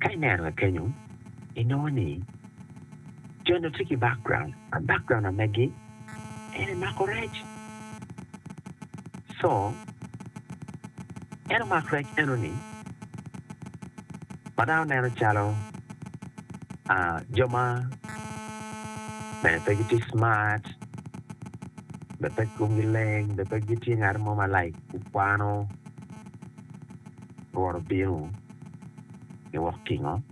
Ka ineno wa kenyo, inongo ni jo-nu tye ki background, ma background amegi ene mako rec. Co, en omak rec eno-ni, ma dano neno calo jo ma mere pe gitye smart, mere pe komgi leng, mere pe gitye ngat mo ma like kwano, rwot obino giwok tingo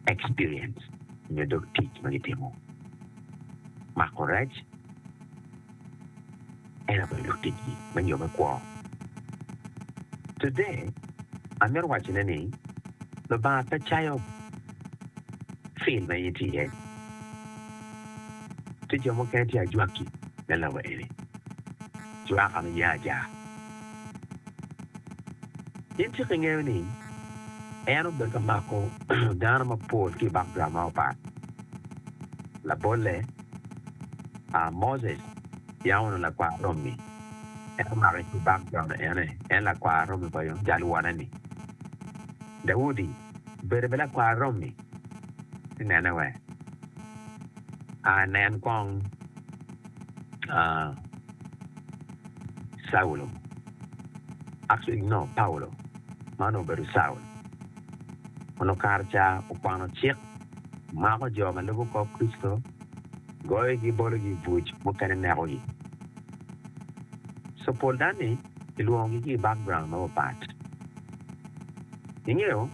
experience nyo dog tic ma gitimo. Mako rec en aye dog ticgi me nyo me kwo. Today amito wacone ni Lubanga pe cayo field ma in itye iye. Tye jo mukene tye ajwaki me lobo eni, jwaka me yaa aja. In cik ingeyo ni en obedo ka mako dano mapol ki i background ma opat. Labolle, Moses yam onongo lakwar romi, en omake ki i background ene, en lakwar romi pa yo jal wonne-ni. Daudi obedo bene lakwar romi, ci nene wek anen kong. Caulo. Actually no Paulo ma onongo obedo Caul onongo kare ca okwano cik, mako jo ma lubo kor Kricito, goyogi bologi i buc, mukene nekogi. So pol danni kilwongogi ki i background mapapat. Ingeyo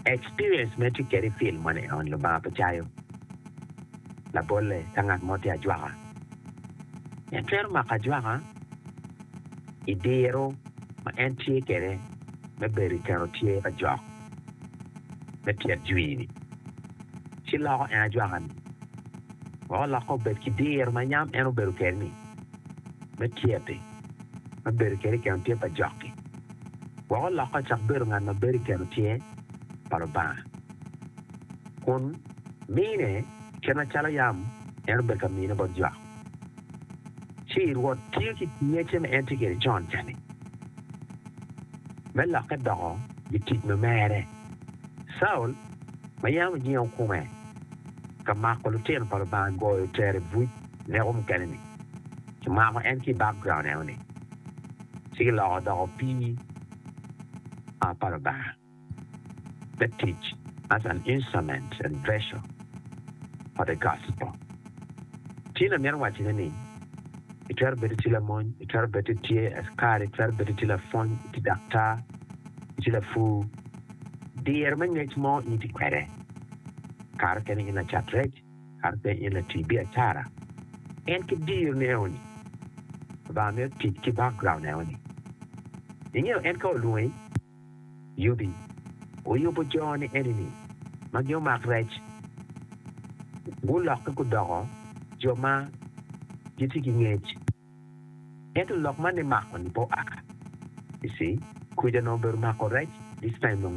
experience ma itye kwede i film man eni Lubanga pe cayo labolle ka ngat mo tye ajwaka. En twero mako ajwaka i diro ma en tye kwede me bedo i keno tye pa jok me tyet jwi-ni, ci loko en ajwaka-ni wek olokke obed ki diro ma yam en obedo kwede-ni me tyet-ti me bedo kwede i keno tye pa jok-ki, wek olokke ocak bedo ngat ma bedo i keno tye pa Lubanga, kun. mine kit macalo yam en obedo ka mine bot jo. Ci Rwot tye ki ngecce ma en tye kwede con ca-ni, me lokke doko gitic ma mere. Caul ma yam ojengo kome ka mako lutino pa Lubanga goyo tere buc neko mukene-ni, kimako en ki i bakgraun enoni, ci kiloko odoko opii pa Lubanga. me tic as an instrument and vessel for the gospel. Ci na mito wacone ni, i twero bedo tye lamony, i twero bedo tye askari, i twero bedo tye lapwony, i tye daktar, i tye lapur, diro me ngec mo in itye kwede. Kare okene in lacat rec, kare okene in latii biacara. En ki diro ne o ni, Lubanga mito tic ki background ne o ni. Ingeyo en ka olwongi. yubi oyubo jo ni enini ma gin omak rec gulokke gudoko jo ma gitye ki ngec. Ento lok ma nimako ni pe oa. You see, kwija onongo obedo mako rec this time.